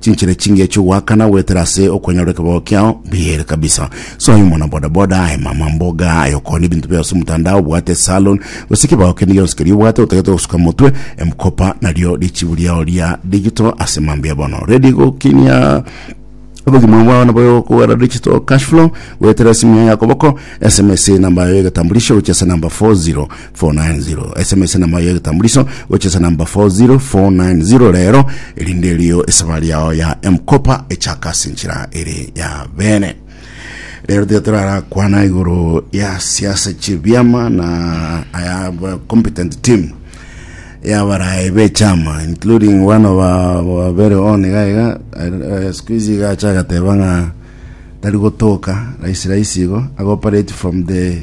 Chinchera chingiya chiogoakana goetera ase okonyora ekebago kiao mbiyere kabisa. Soa aye omwana boda boda, aye mama mboga, aye okone ebinto biao ase omotandao, obwate esalon, gose ekebago kende gionsi keria obwate otagete gosuka motwe, emkopa nario richibu riao ria digital ase mambia bono. Ready gokinia obogima bwao nabo okogera digital cash flow goetera ase emiya ya koboko, sms, enamba yayo ya egetambulisho gochia ase enamba 40 490 esemo esenamo ya egetambuliso gocha esenamba 40490 rero erinde erio esabari yao ya mkopa echaka ase enchera ere ya bene rero tiga torarakwana igoro ya siasa chibiama na aya ba- competent team yabarae bechama including one of our- our very own gaiga skuizi gacha agateba ng'a tari gotoka raisi raisi igo agoperate from the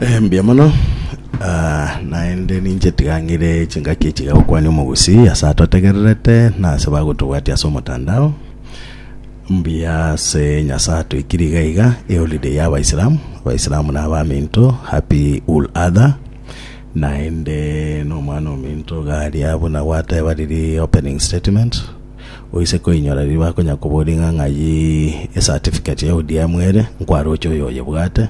Eh, mbuya mono Ah, naende ninche tigang'ire chingaki echiga gokwania omogusi ase atotegererete na ase bagotobwatia ase omotandao mbuya ase nyasaye atoikiri iga iga eholiday ya abaisilamu abaisilamu na abaminto happy ul adha naende nomwana ominto garia buna gwateba riri opening statement Oise koinyora riria bakonya koboria ng'a ng'ai ecertificate ya ODM ere, nkwaroche oyo oyebwate.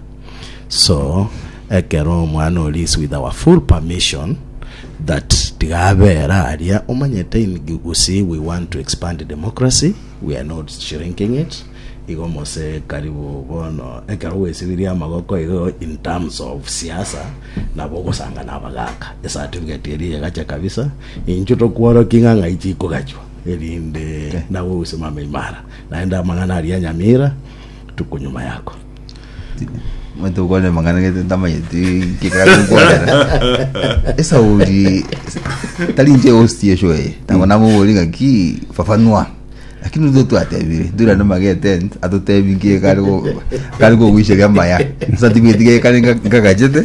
So, ekero omwana oria is with our full permission that tiga abera aria, omanyete in Gusii we want to expand democracy, we are not shrinking it, igo mose karibu bono ekero gwesiririe amagoko igo in terms of siasa, nabo ogosanga nabagaaka ecertificate eria egacha kabisa, Inchuo tokworokia ing'ang'a eye chikogachwa, erinde nawe osimame imara, naende amang'ana aria nyamira rituko nyuma yako. Omanyete okwanera amang'ana gete ntamanyeti nkekare okwanera esauri tari inche host yesho eye nabo namobori ng'aki fafanua lakini nigo twatebire ndurane mageten atotebi nkekare go- kare kogoicheria amaya ase atibueti gekare nka- nkagachete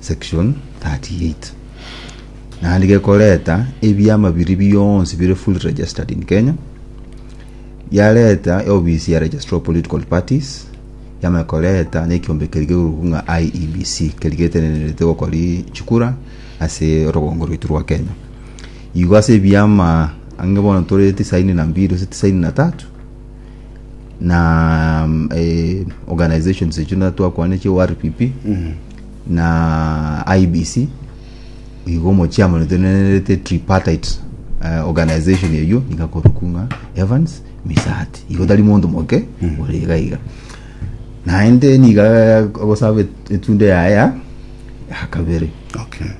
Section 38 naende gekoreta ebiama biria bionsi bire fully registered in Kenya yareta eofisi ya Registrar of Political Parties yamanya koreta na ekiombe keria kegorugu ng'a IEBC keria getenenerete gokori chikura ase orogongo rwaitu rwa Kenya igo ase ebiama ang'e bono tore tisaini na mbili gose tisaini na tatu na mm, eh, organizations echo na twakwane chio RPP na IBC igo omochiamano tonenerete tripartite uh, organization eyo igakoruku ng'a Evans Misati igo tari monto moke ore iga iga naende niga gosaba et- etundo yaya ya kabere okay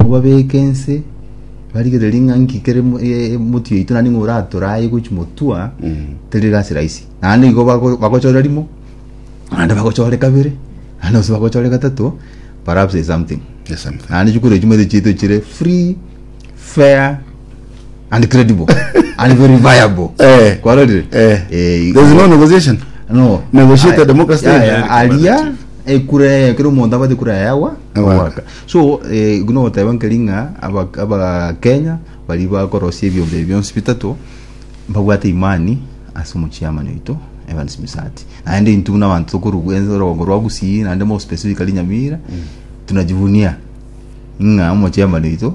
Mobabeke ense, barigererie ng'a nki kere mo- e- emoti yaito naende ng'a oratora aye gochi motua, teri egasi rahisi. Naende igo bago- bagochore rimo, naende bagochore kabere, naende gose bagochore gatato, perhaps is something. Yes, something. Naende chikoro echi moete chiaito chire free, fair, and credible, and very viable. Eh. Kwarorire? Eh. Eh, There's no negotiation. No. Negotiate Aye. democracy. Yaya, aria ekura ekero omonto abate ekura yaye agwa Agwa. agwaka So igo nogoteba nkeri ng'a aba- abakenya baria bakorosia ebiombe ebi bionsi bitato mbabwate imani ase omochiamani oito Evans Misati naende intwe buna abanto tokorwa ense orogongo rwa Gusii naende more specifically Nyamira tunajivunia ng'a omochiamani oito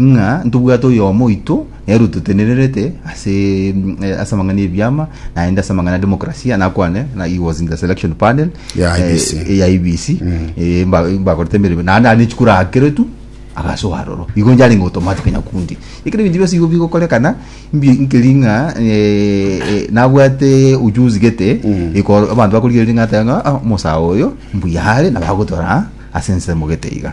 ng'a ntobwate oyomo oito nere ototenererete ase eh, ase amang'ana y'ebiama naende ase amang'ana ya demokrasia nakwane na he was in the selection panel Ya eh, IEBC. eh, ya ibc Eh, mba- mbakorete emeremo naende ane chikura akeretu agasoa aroro igo njarenge automatic nyakundi ekero ebinto bionsi igo bigokorekana mbi- nkeri ng'a eh, eh, nabwate ujuzi gete ikoro- abanto bakorigereria ng'a ateba ng'a "Ah, omosae oyo mbuyare nabagotora ase ensemo gete iga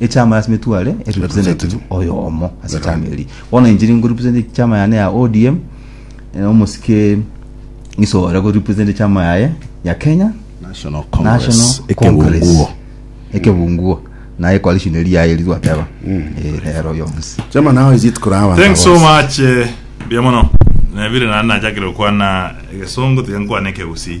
Echama ya Smith Wale e representative oyomo ase echama eri bono inche nigo represent echama yane ya ODM eh, omosike ng'iso ore go represent echama yaye ya Kenya National Congress, National ekebunguo. Congress ekebunguo naye coalition eri yaye eri twateba Eh, rero yonsi Chama nao iji tukoraba Thanks so much eh, mbuya mono nabire naye nachakire gokwana egesongo tiga nkwane ekegusii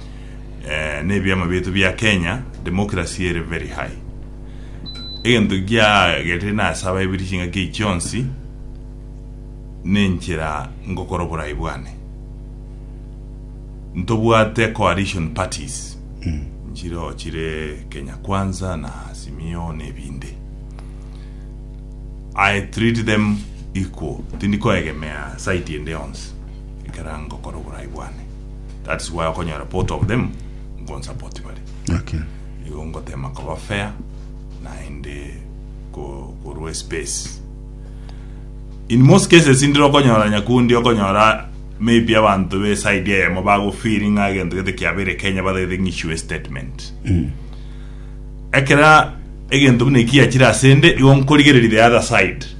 eh, nebiama bietu bia Kenya democracy ere very high egento giagerire nase abaibiri chingaki echi chionsi nenchera ngokora oborai bwane ntobwate coalition parties nchiro chire Kenya Kwanza na Simio nebinde I treat them equal tindi koegemea side ende yonsi ekera ngokora oborai bwane that is why okonyora both of them nkonsupport bare Okay. igo ngotema koba fair naende ko- korwa space in most cases ndire okonyora nyakundi okonyora maybe abanto be side eyemo bagofeeling ng'a egento gete kiabere kenya batagete ng'isue statement ekera egento buna ekiachire ase nde igo nkorigereria the other side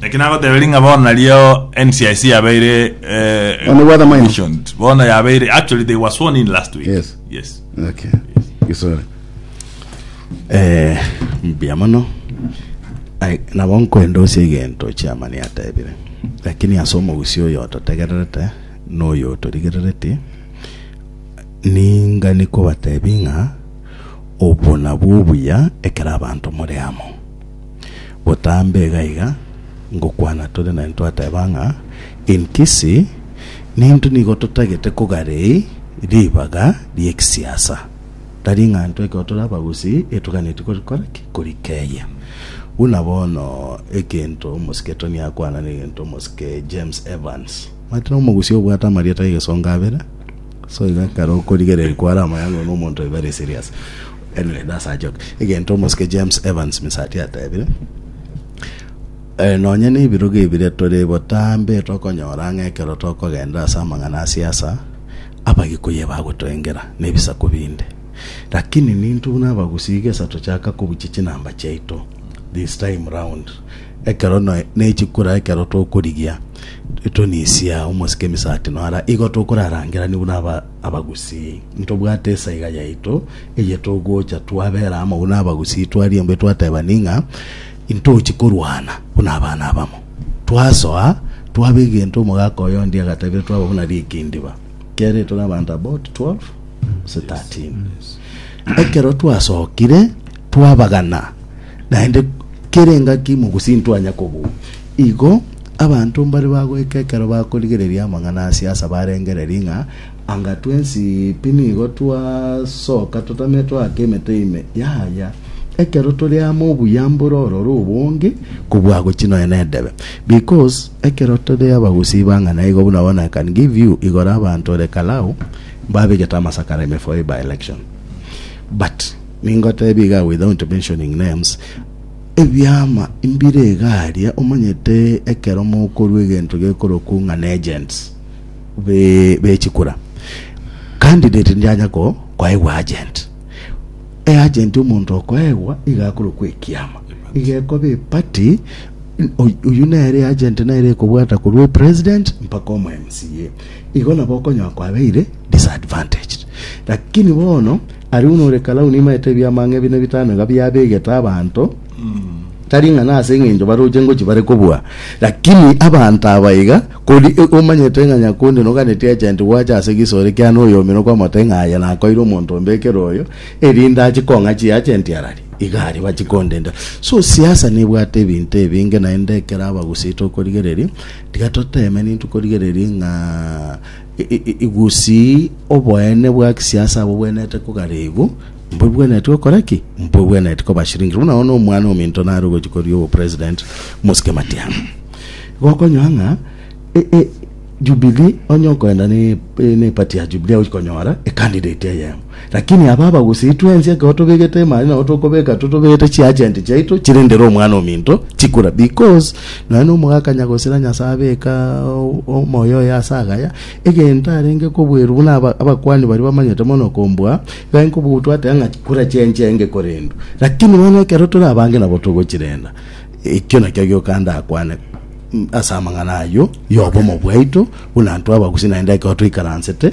Naki nagoteberia ng'a bono nario NCIC yabeire eh, Oh, nibwo the minor. commissioned. bono yabeire actually they were sworn in last week Yes. yes Okay. Gisore. Eh, mbuya mono Ai, nabo nkwenda ose egento chiamani atebire lakini ase omogusi oyo ototegererete na oyo otorigerereti ninga nikobatebi ng'a obwo nabwo obuya ekero abanto more amo Botambe iga iga ngokwana tore naye ntwateba ng'a enkisi nintwe nigo totagete kogarei ribaga ri'egisiasa. Tari ng'a intwe ekero tore abagusii etoganeti korikora ki? Korikeyia. Buna bono egento omosike Tony akwana negento omosike James Evans. Omanyete na omogusi obwate amarieta egesongo abere so iga ekero okorigereria kware amayang'ana na omonto oyo very serious. Henry nasachoke, egento omosike James Evans Misati atebire, Eh, nonye nebirogo ebire tore botambe tokonyora ng'a ekero tokogenda ase amang'ana a siasa Abagikuyu ebagotoengera nebisaku binde. Lakini ninto buna Abagusii iga esatochaka kobuchia chinamba chiaito this time round ekero noe nechikura ekero tokorigia tonisia omosike Misati nora igo tokorarangerania buna aba Abagusii, ntobwate esaiga yaito, eye togocha twabera amo buna abagusii, twarimbwa etwatebani ng'a intochi korwana buna abana abamo. Twasoa, twaba egento omogaka oye onde agatebire twaba buna rikindiba, kere tore abanto about 12 gose 13. Ekero twasokire twabagana, naende kera engaki mogusii ntwanya kobua. Igo abanto mbare bagoika ekero bakorigereria amang'ana a siasa barengererie ng'a, Anga twensi pi nigo twasoka totame toaka emete ime? Yaya! Ekero tore amo obuya mbore ororo obonge kobua gochi nonya nedebe. Because ekero tore abagusii bang'ana igo buna bono I can give you igoro abanto ore Kalau mbabegete amasakara ime for a by-election. But ningotebie iga without mentioning names, Ebiama mbire iga aria, omanyete ekero mokorua egento gekorokwa ng'a n'agents be bechikura candidate ndianya ko koegwa agent e agent omonto okoegwa iga akorokwa ekiama iga ekobe party uyu nere agent nere ekobwata korwa e president mpaka omo MCA igo nabo okonyoa kwabeire disadvantaged lakini bono Aruno ore karau nimaete ebiamang'e bine bitano iga biabegete abanto, tari ng'a nase engencho baroche ngochia bare kobua, lakini abanto aba iga, kori omanyete ng'a nyakundi noganetie agenti gwacha ase gisore kiane oyomino kwamota ng'a aye nakoire omonto ombekere oyo, erinde achie kong'a chiagenti arari, iga aria bachie kondenda. So siasa nebwate ebinto ebinge naende ekero abagusi tokorigereria, tiga toteme nintwe korigereria ng'a. Gose oboene bwa gisiasa abwo bwenerete kogaregwa, mbwe bwenerete gokora ki? Mbwe bwenerete kobashiringera. Buna bono omwana ominto nare ogochi koria obo president Mosike Matiang'i. Gokonyora ng'a e, e, Jubilee onye okoenda ne, ne party ya Jubilee ochi konyora e candidate eyemo. Lakini aba abagusii twensi ekero tobegete emari nabo tokobeka tore tobegete chiagenti chiaito chirendere Omwana-o-minto chikura, because nonya nomogaka nyagosira Nyasae abeka omoyo oye ase agaya, egento arenge kobweru buna aba abakuani baria bamanyete mono kombua, igo arenge kobua gotwa ateba ng'a chikura chianchia enge korendwa. Lakini bono ekero tore abange nabo togochirenda, ekio nakio gioka ndakwane ase amang'ana ayio y'obomo bwaito buna intwe abagusii naende ekero toikaransete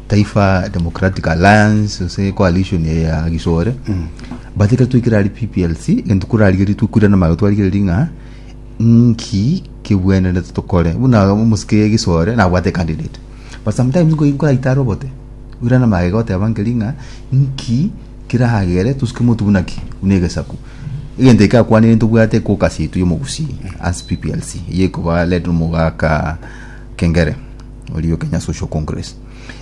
Taifa Democratic Alliance ase coalition ya Gisore but ekero twaikire ari PPLC egento korarigerie twakwirana magega twarigereria ng'a nki kebwenerete tokore buna omosike Gisore nabwate candidate but sometimes nko- nkoraita are obote oirana magega oteba nkeri ng'a nki keragere tosuke motu buna ki buna egesaku egento eke akwanire ntobwate caucus yaito ya omogusii as PPLC eye ekoba led omogaka Kengere Orio Kenya Social Congress.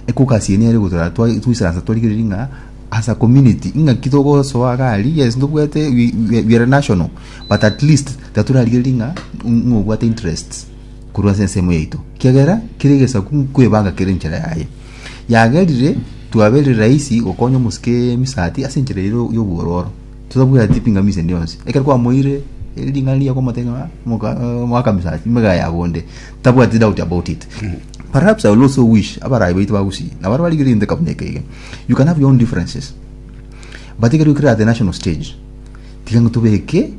Ekogasi eye nere gotoraa twa- twisaransa twarigereiri ng'a as a community ing'aki togosoa iga aria yes ntobwate we- we- we are national but at least tiga torarigereiri ng'a ng'a obwate interests korwa ase ensemo yaito ekiagera kera egesaku nkoebanga kere enchera yaye yagerire twabere rahisi gokonya omosike emisati ase enchera ero ya obwororo totabwati pingamizi ende yonsi ekero kwamoire ring'ana riago omotebia ng'a moka moaka misati mega yabwo onde tabwati doubt about it perhaps i will also wish abarayi baito ba gusii nabare barigire into kabuna eke ege you can have your own differences but ekero okire at the national stage tiga ng'a tobeke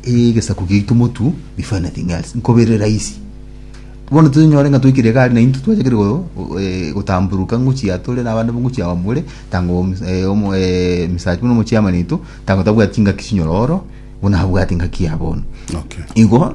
egesaku giaito motu before anything else nkobere rahisi bono tonyore ng'a toikire egari na into twachakire go- go- eh, gotamburuka ngochia tore na abande ngochia awa more tanga omo- mis- eh, omo- eh, Mr. buna omochairman oito tanga tabwati ngaki chinyoro oro buna abwate ngaki yabo bono Okay. igo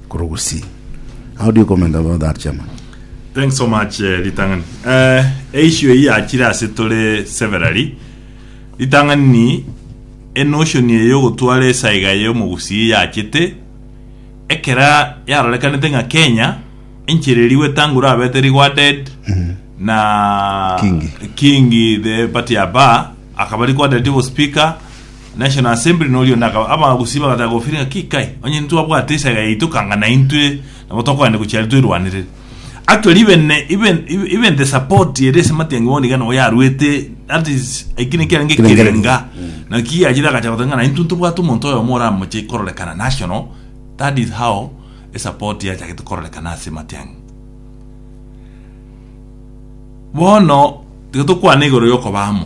Korwa gusii. How do you comment about that chairman? Thanks so much eh, ritang'ani eh, eissue eyi yachire ase tore severally ritang'ani enotion eye yogotwara esaiga ya omogusii yachete ekera yarorekanete ng'a kenya enchera eri gwetangurwa abete riguarded na Kingi. kingi the party ya ba akaba riguarded obo speaker National Assembly na oria onde akaba, abagusii bagataka gofiria ng'a, Ki kai? Onye ntitwabwate esaga yaito kanga naintwe nabo tokoenda gochia aria toirwanerere. Actually even even even the support ere ase Matiang'i bono iga nabo yarwete that is eki naki arenge Ekerenga. ekerenga naki yachire agacha goteba ng'a naintwe ntobwate omonto oyomo oramoche kororekana national that is how esupport yachagete kororekana ase Matiang'i. Bono tiga tokwane igoro ya okoba amo.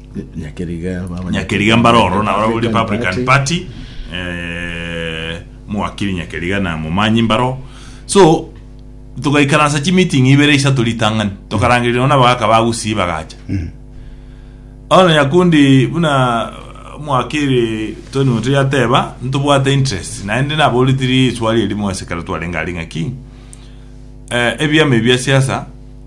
Nyakeriga baba Nyakeriga mbare oro na ore Republican Party eh, mwakiri Nyakeriga na momanyi mbaro so tugaikaransa chi meeting ibere isato ritang'ani tokarangererwa na bagaka ba Gusii bagacha Ono Nyakundi buna mwakiri Tony Muturi ateba ntobwate interest naende naboritiri eswali erimo ase ekero twarenge aria ng'aki eh, ebiama ebi bia siasa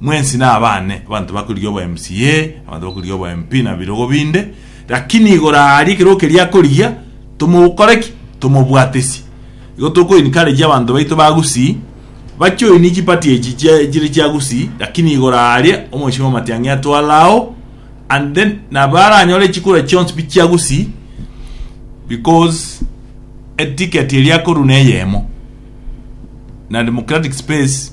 Mwensi nabane abanto bakorigia obo MCA, abanto bakorigia obo MP na birogo binde, lakini igoro aaria ekero okeria akorigia tomokore ki? Tomobwatesie. Igo toko encourage abanto baito ba Gusii ba join chi party echi chire chia Gusii lakini igoro aaria omochie wa Matiang'i atware ao and then nabo aranyore chikura chionsi pi chia Gusii because eticket eria akorwa neyemo na democratic space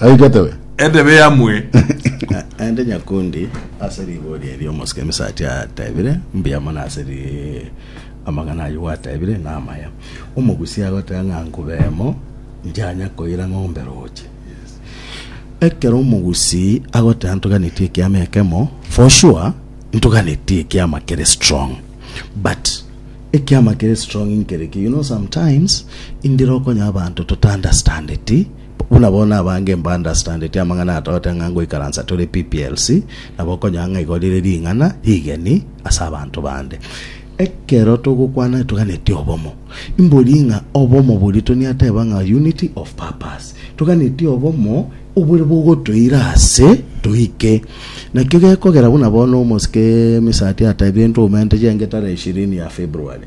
Aigetowe. Entebe yamwe. Naende Nyakundi ase rigori erio omosike Misati atebire, Mbuya mono ase ri amang'ana ayio gwatebire namaya. Omogusii agoteba ng'a nkubemo, njanya koira ng'ombe roche. Ekero omogusii agoteba ntoganetie ekiama ekemo, for sure ntoganetie ekiama kere strong. But ekiama kere strong nkere ki? You know sometimes indire okonya abanto totaunderstandeti Buna bono abange mbaunderstandeti amang'ana atoete ng'a ngoikaransa tore pplc, nabo okonyora ng'a igo rire ring'ana rigeni ase abanto bande. Ekero togokwana toganeti obomo, imbori ng'a obomo boria Tony ateba ng'a unity of purpose. Toganeti obomo obore bogotoira ase toike. Nakio gekogera buna bono omosike Misati atebie ntoume ntejenge tarehe ishirini ya February.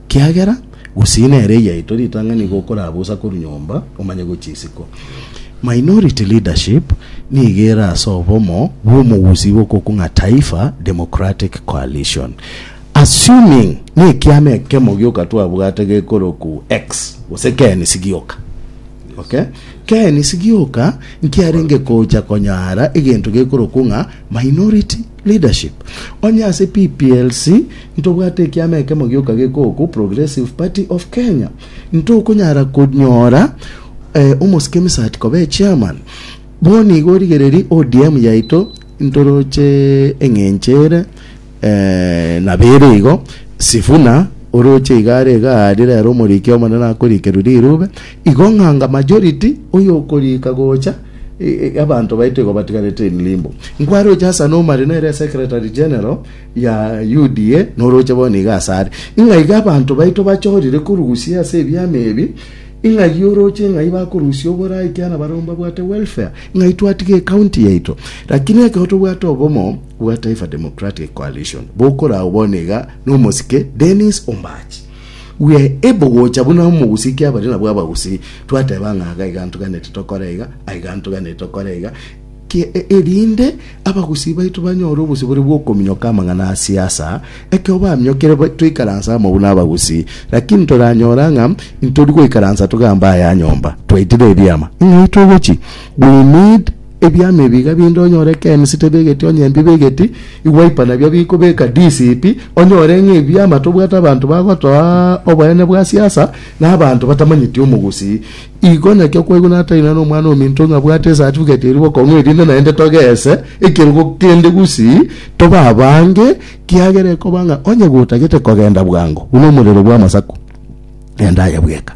Kiagera gusii nere eyiaito ritang'ani nigo okorabusa korwa nyomba omanye gochia isiko. Minority Leadership nigo ere ase obomo bw'omogusii bw'okokung'a Taifa Democratic Coalition. Assuming nekiama ekemo gioka twabwate gekoroku X gose knc gioka. Okay? Knc gioka nkiarenge kocha konyara egento gekoroku ng'a Minority Leadership, Onye ase PPLC ntobwate ekiama ekemo gioka gekoku Progressive Party of Kenya, ntokonyara konyora omosike Misati koba echairman. Bono igo origereri ODM yaito ntoroche eng'encho ere nabo ere igo. Sifuna oroche iga are iga aria rero omoriki omonene akorikerwe rirube. Igo ng'anga majority oyo okorika gocha. Abanto baito igo batigarete in limbo. Nkwaroche ase Anna Omari nere esecretary general ya UDA noroche bono iga ase are. Ing'aiga abanto baito bachorire korusia ase ebiama ebi ing'agia oroche ng'ai bakorusia oborai ekiana barabwo mbabwate welfare ng'ai twatiga ecounty yaito lakini ekero tobwate obomo bwa Taifa Democratic Coalition bokorao bono iga nomosike Dennis Ombachi Gwe ebo gocha buna omogusii kiabare nabwo abagusii twateba ng'a aga iga ntuganete tokore iga, aiga ntuganete tokore iga, ki e- erinde abagusii baito banyore obosibore bw'okominyoka amang'ana a siasa, ekero baminyokire ba- toikaranse amo buna abagusii. Lakini toranyora ng'a ntori goikaransa togamba aya nyomba, twaitire ebiama, ng'ai togochi? We need Ebiama ebi iga binde onyore ekemi sitebegeti onye mbibegeti, igwaipa nabio bikobeka disipi, onyore ng'a ebiama tobwate abanto bagotoa oboyene bwa siasa, na abanto batamanyeti omogusii. Igo naki okwaigwa nataina n'omwana ominto ng'a abwate esatifigeti eria bokong'u erinde naende togese ekerogo kende gusii tobe abange, kiagera ekoba ng'a onye gotagete kogenda bwango buna omorero bw'amasaku, genda aye bweka,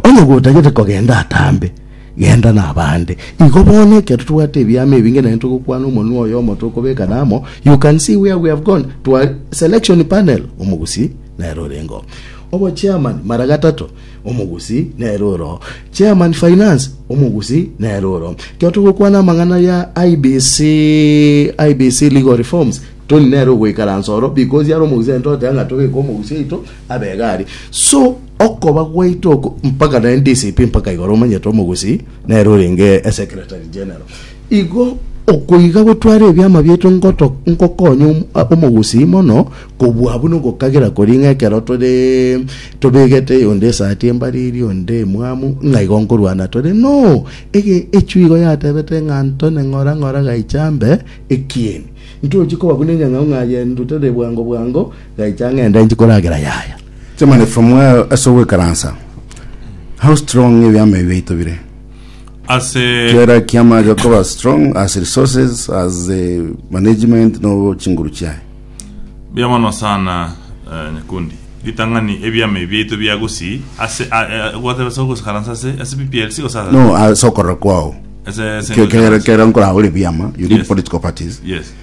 onye gotagete kogenda atambe. Genda nabande. Igo bono ekero tobwate ebiama ebinge naende togokwana omonwa oyomo tokobekana amo, you can see where we have gone to a selection panel, omogusi nere orenge oo. Obo chairman mara gatato, omogusi nere ore oo. Chairman finance, omogusi nere ore oo. Ekero togokwana amang'ana ya IEBC, IEBC legal reforms, Tony nere ogoikaransa ororo because are omogusi naende togoteba ng'a tobeke omogusi oito, ab'egari, so okoba gwaito oko mpaka naende DCP mpaka igoro omanyete omogusii nere orenge eSecretary General. Igo okoiga gotwara ebiama biaito ngoto ngokonya om- a- omogusii mono kobua buna ogokagera koria ng'a ekero tore tobegete onde esati embariri onde emwamu ng'a igo nkorwana tore no ege echwe igo yatebete ng'a Antony ng'ora ng'ora gaicha mbe ekieni ntochi koba buna enyang'au ng'a yendutete bwango bwango Gaicha ng'ende nchi koragera yaya. Germany from where ase ogwekaransa how strong ebiama ebi biaito bire Ase kera kiama gekoba strong as resources as the management no chinguru chiaye Buya mono sana eh, Nyakundi. Ritang'ani ebiama ebi biaito bia gosi ase a- eh, gwateba ase ogokaransa ase ase PPLC gose ase- no ase okorora kwao ase ase Ke- kera ogokaransa. kera nkoragore biama you need Yes. political parties Yes.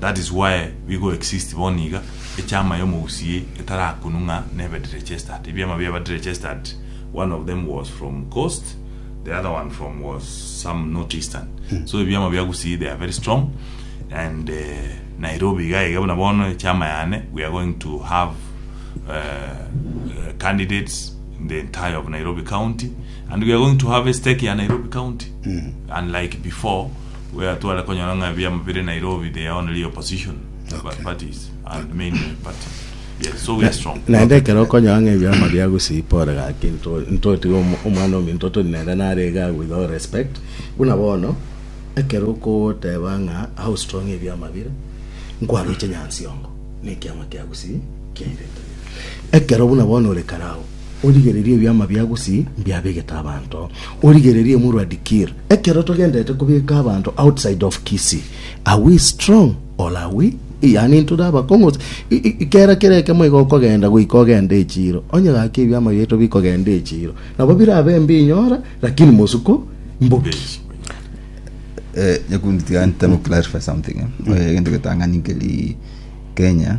That is why bigo exist bono iga echama ya omogusii etarakunwa ng'a nebe derechester'd. Ebiama biaba derechester'd one of them was from coast the other one from was some not eastern. So ebiama bia gusii they are very strong and eh, Nairobi iga iga buna bono echama yane we are going to have eh, eh, candidates in the entire of Nairobi county and we are going to have a stake ya Nairobi county unlike before We are tware konyora ng'a ebiamo bire Nairobi they are only opposition Okay. parties and main parties. Yes, so we are strong. Naende ekero okonyora ng'a ebiama bia Gusii pore gaki nto- ntotiga omo- omwana ominto toni nere nare iga with all respect buna bono ekero okoteba ng'a how strong ebiama bire nkwaroche Nyansiongo na ekiama kia Gusii kiairete ekero buna bono ore kare agwo Origererie ebiama bia Gusi mbiabegete abanto, origererie omorwa Dikir. Ekero togenderete kobeka abanto outside of Kisii, are we strong or are we yaani ntore abakong'u gose i- i- kera kera ekemo iga okogenda goika ogende echiro onye gaki ebiama biaito bikogenda echiro nabo birabe mbinyora lakini mosuko mboki Eh, nyakundi tiga ntemo clarify something eh. Oye egento getang'ani nkeri Kenya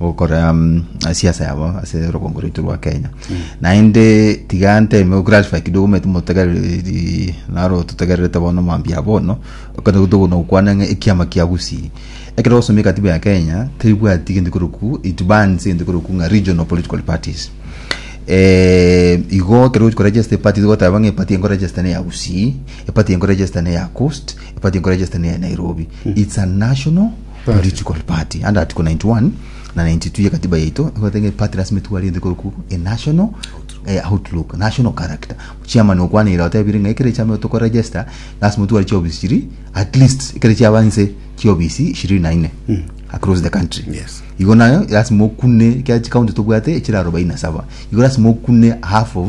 gokora mm, siasa yabo ase rogongo rwaitu rwa kenya naende tiga nteme goclarify kidogo mete motegereri naro totegererete bono mambia bono okana gotogona gokwana ng'a ekiama kia gusii ekero osomia ekatiba ya kenya teribwati egento keroku it bans egento keroku ng'a regional political parties eh, igo ekero ochi koregister epati togoteba ng'a epati enkoregister ne ya gusii epati enkoregister ne ya coast epati enkoregister ne ya nairobi it's a national Rituko Part 191 na 92 ye Katiba yaito egoteba ng'a part lasima etware egento ekekorokwa a national outlook, national character. Chairman okwaneirie otebire ng'a ekero echaama egotaka koregister lasima otware chiofisi chiria at least ekero chiaba nse chiofisi ishirini na ine across the country. Yes. Igo naye lasima okune ekiagera chicounty tobwate echire arobaini na saba igo lasima okune half of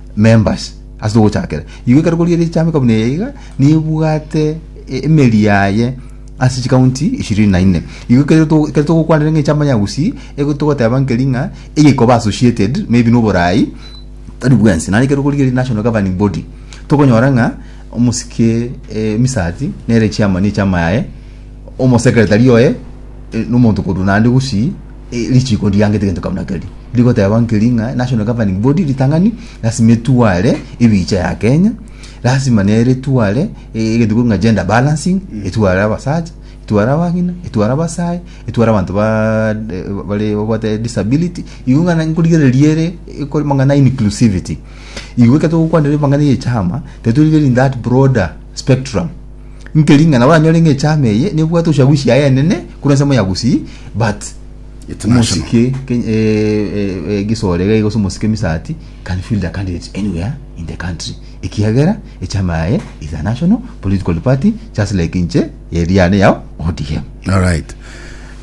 members ase ogochakera igo ekero kori ere chama ekabuna eye iga nebwate e- emeri yaye ase chikaunti ishirini na ine igo ekero to- ekero togokwanera ng'a echama ya gusii ego togoteba nkeri ng'a eye ekoba associated maybe na oborai tari bwensi naende ekero kori ere national governing body tokonyora ng'a omosike eh, misati nere chairman ya echama yaye omosekretari oye eh, nomonto korwa naende gusii Eh, richiko ndiangete gento kabuna keri rigoteba nkeri ng'a national governing body ritang'ani lasima etware ebicha ya kenya lasima nere etware eh, egento kori ng'a gender balancing etware abasacha etware abagina etware abasae etware abanto ba eh, bare babwate disability igo ng'ana nkorigereria ere ekore mang'ana inclusivity igo ekero togokwanera mang'ana ya echama tari torigereria in that broader spectrum Inki ring'ana oranyore ng'a echama eye nebwate ochagusi yaye enene korwa ensemo ya Gusii but It's national. omosike Ken- eh, eh, eh, gisore iga iga ase omosike misati can field a candidate anywhere in the country ekiagera echama yaye is a national political party just like inche eriane yao odm All right.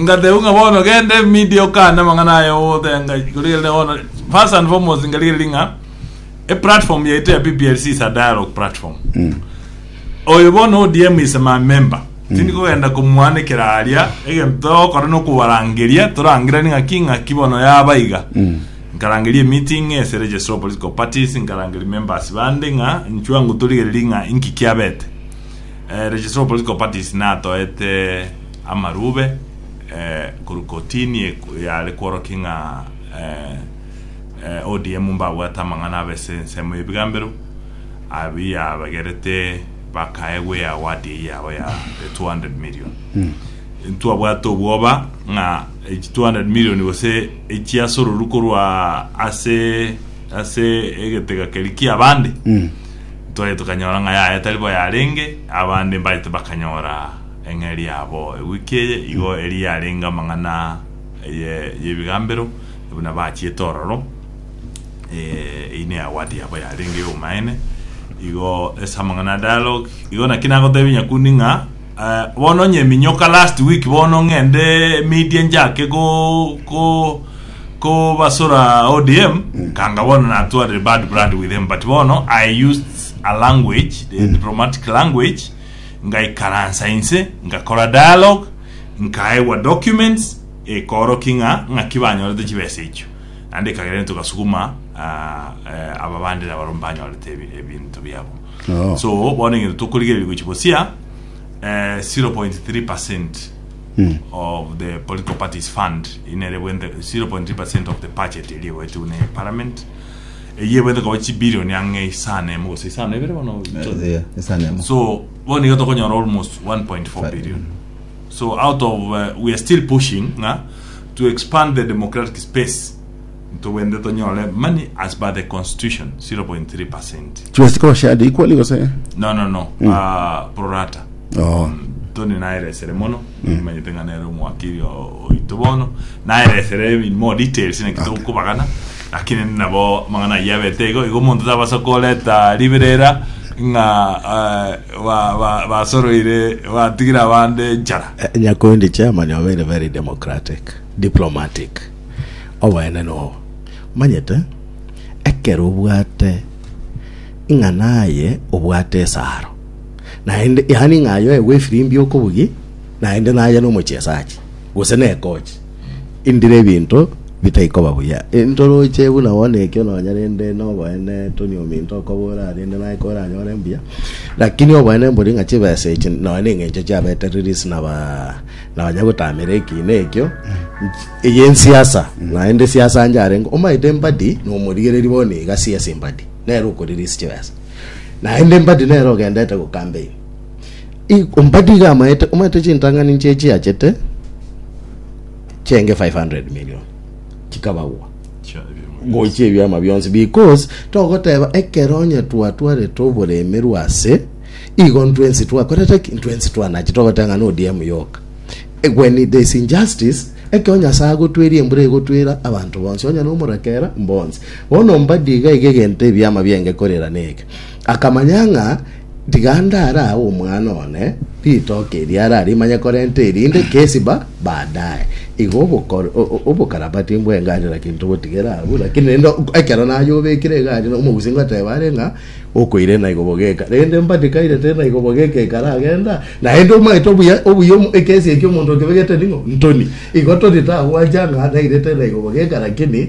Ngatebwa ng'a bono genda emedia okane amang'ana aya ogotenga ng'a rikorigere bono first and foremost nkarigeri ng'a eplatform yaito ya PPLC is a dialogue platform oyo bono ODM is my member tindi kogenda komwanekera aria egento togokora nokobarangeria torangerani ng'a ki ng'a ki bono yaba iga nkarangeria meeting ase registrar of political parties nkarangeria members bande ng'a inchwe ango torigereri ng'a inki kiabete eh, registrar of political parties natoete Amarube, eh, korwa kotini eko yare kworokia ng'a eh, eh, ODM mbabwate amang'ana abese ensemo y'ebigambero abi yabagerete bakaegwa eye award eye yabo ya the 200 million. Ntwabwate obwoba ng'a echi 200 million gose echiasororu korwa ase ase egetega keri kia abande. Ntwaye tukanyora ng'a yaye tari bo yarenge abande mbaete bakanyora Eng'eria yabo ewiki eye igo eria yarenge amang'ana y'ebigambero buna bachiete ororo, eyio neagwate yabo yarenge y'obomaene. Igo ase amang'ana a dialogue, igo naki nagotebia Nyakundi ng'a bono onye eminyoka last week bono ng'ende media njake kobasora ODM, kanga bono natwarire bad blood with them but bono I used a language, a diplomatic language. ngaikaransa inse ngakora dialogue nkaegwa documents ekoorokia ng'a ng'aki banyorete chibesa echio naende ekagerania togasuguma aba bande na barobwo mbanyorete ebinto biabo oh. so bono egento tokorigereria gochi bosia 0.3 percent mm. of the political parties fund inere bwente 0.3 percent of the budget eri egoetwe ne parliament eyio ebwete koba chibilioni ang'e isano emo gose isano ebere bono Eh, isano emo. so bono iga tokonyora almost 1.4 billion so out of uh, we are still pushing nga to expand the democratic space ntobwende tonyore money as per the constitution 0.3 percent Chibasiko bashade equally gose? no no no uh, prorata Oh. toni naeresere mono Nimanyete ng'a nere omwakiri o- oito bono naelesere in more details naki Okay. togokobagana lakini nabo amang'ana ayio abete igo igo omonto tabasa koreta riberera ng'a eh, ba- ba- basoroire batigire abande enchara Eh, Nyakundi chairman obeire very democratic, diplomatic. Oboene nobo. Manyete ekero obwate ng'a naye obwate esaro naende, yaani ng'a ayoe bw'efirimbi okobugi, naende naye nomochiesachi, gose nekochi, indire ebinto bitai koba buya. Intoroche buna bono ekio nonya rende noboene toni ominto okobora rende naye koranyore mbuya, lakini oboene mbori ng'a chibesa echi nonya neng'encho chiabetereris naba nonya gotamera ekiina ekio eye ensiasa, naende siasa anjarenge, omaete mbadi nomorigereria bono iga siasa embadi nere okoriris chibesa. naende mbadi nere ogendete gokambein I- mbadi iga amaete omanyete chintang'ani nchie chiachete chenge 500 million chikabagwa Chia ebimu. gochia ebiama bionsi because togoteba ekero onye twatwarete oboremerwa ase igo ntwensi twakorete ki ntwensi twanachi togoteba ng'a nodm yoka Eh, when there is injustice ekero nyasaye agotweria embura egotwera abanto bonsi onye nomorakera mbonsi Bono mbadi iga iga egento ebiama bi'engeko erirane eke. Akamanya ng'a tiga ndare agwo omwana one ritoke eri are arimanye korenta erinde Kesiba baadaye. Igo obokor- o- o- obokarabati bw'engari naki ntobotigera abwo, lakini rende ok- ekero nayobekire egari na omogusi ngoteba are ng'a okoire naigo bogeka. Rende mbadi kaire teri naigo bogeka ekaragenda, naende omanyete obuya obuya omo ekesi ekia omonto okebegete ning'o? Ntoni. Igo ntoni tagwancha ng'a naire teri naigo bogeka lakini.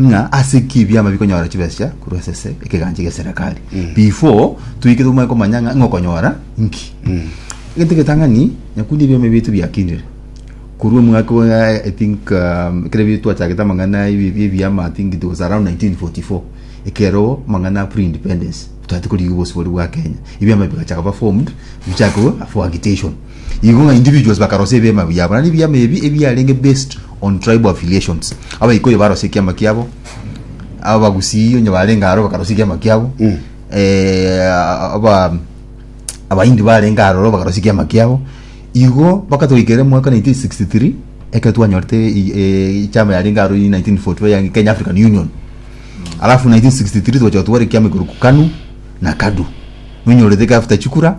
ng'a ase ki ebiama bikonyora chibesa korwa ase ase ekegancha gi'eserekari before toike tomanye komanya ng'a ng'a okonyora nki egento egetang'ani nyakundi ebiama ebi tibiakinire korwa omwaka wa i think um, ekero ebi twachagete amang'ana ebi ebi ebiama i think it was around 1944 ekero amang'ana a pre independence twatete korigia obosibori bwa kenya ebiama bigacha koba formed bichake after agitation Igo ng'a individuals bakarosia ebiama biabo, naende ebiama ebi ebiarenge based on tribal affiliations. Abaikuyu barosia ekiama kiabo, Abagusii onye barenge aro bakarosia ekiama kiabo, eh, aba Abahindi barenge aroro bakarosia ekiama kiabo. Igo mpaka twaikere mwaka 1963 ekero twanyorete i- eh, ekiama yarenge aro 1944 ya Kenya African Union alafu 1963 twacha twara ekiama igoro ku kanu na kadu nonyorete after chikura